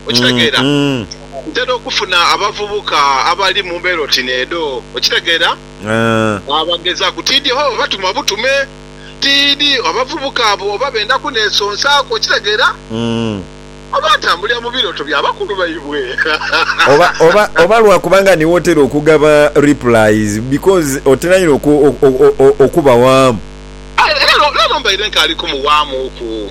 Okitegeera? Ntera okufuna abavubuka abali mu mbeera oti n'edho. Okitegeera? Abagezaaku. Tiidhi hoo batuma butume. Tiidhi abavubuka abo oba benda kuneesonsaaku. Okitegeera? Oba atambulira mu birooto bya bakulu baibwe. Oba, oba, oba lwa kuba nga niiwe otera okugaba replies, because otera inho oku, o, o, o, okubawaamu. Aye leero, leero mbaire nkaali kumuwaamuuku.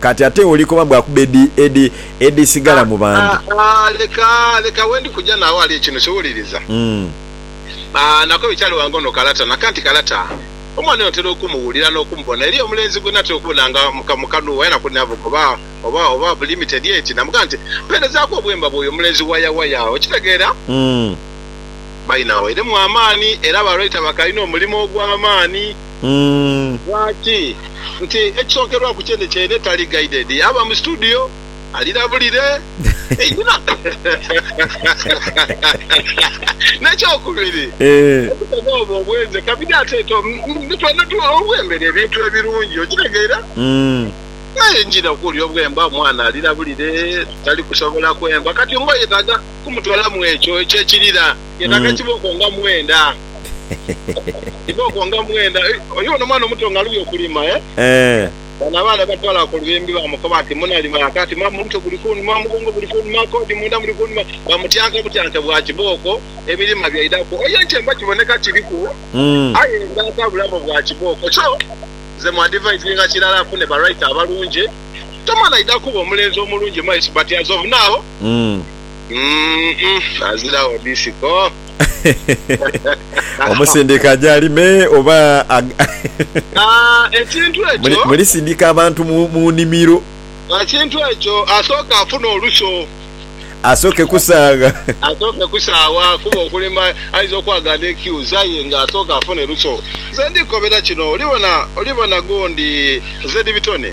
Kati ate oli koba mbu akuba edi, edi, edisigala mu bantu. Ah, ah, leka, leka we ndi kuja naawe ghali ekintu kiwuliriza. Ah, nako bikyali ghange ono kalata, naka nti kalata. Omwana oyo ntera okumuwulira n'okumubona. Eriyo omulenzi gwe natera okubona nga mu, mu kanu waya nakuli navuga oba, oba, oba bu limited eti, namugamba nti, Mpeerezaaku obwemba bw'oyo omulenzi waya, waya. Okitegeera? Baina wairemu amaani, era ba writer bakalina omulimo ogw'amaani. Umm. Lwaki? Nti ekisokerwaku kyene kyene tali guided yaaba mu studio alirabulire einhuma. Nekyokubiri okutega obwo obwenze kabidi ate to mbu twena tu obwembera ebintu ebirungi okitegeera aye njira okuwulira obwemba omwana alirabulire tali kusobola kwemba kati mbu oyetaga kumutwala mwekyo ekyekirira. Yetaga kibooko nga mwenda. Kibooko nga mwenda. Oli bona omwana omuto nga alubye okulima eh. Bano abaana batwala ku luyimbi bamukoba nti munalima aka ati maama omutwe guli kunuma, omugongo guli kunuma, kodi mwenda muli kunuma. Bamutyanka butyanke bwa kibooko ebilima byaidaku. Oyo ekyemba kiboneka kiliku aye nga ata bulabe bwa kibooko. So nze mu advisinga kilala afune ba writer abalungi. Tomala aida kuba omulenzi omulungi maiso but as of now. Umm aziragho disiko. Omusindika aje alime oba mulisindika abantu mu nimiro? Ekintu ekyo asooke afune oluso. Asooke kusaagha. Asooke kusaagha kuba okulima aidha okwagha ni kiuzi aye nga asooke afune luso. Nze ndikukobera kino, oli bona, oli bona gundi nze ni bitone.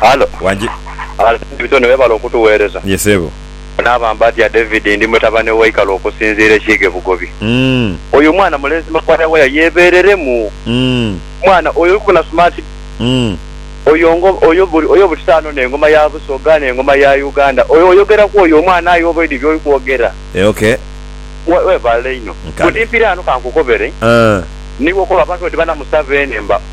Halo. Wangi. Halo Bitone webale okutuwereza. Ye sebo. Naaba mbatya David ndi mutabane wa Ikalo okusinziira e Kiiga e Bugobi. Oyo omwana mulenzi Makwaya waya yebereremu. Mwana oyo olikubona smart oyo ngo oyo oyo butitaano nengoma ya Busoga nengoma ya Uganda oyo oyogera kwoyo omwana aye oba oidhi byoli kwogera. Okay. Webale inho. Nkale. Kuti mpire ghano kankukobere. Niwe okoba abantu bati bana Musaveni mba.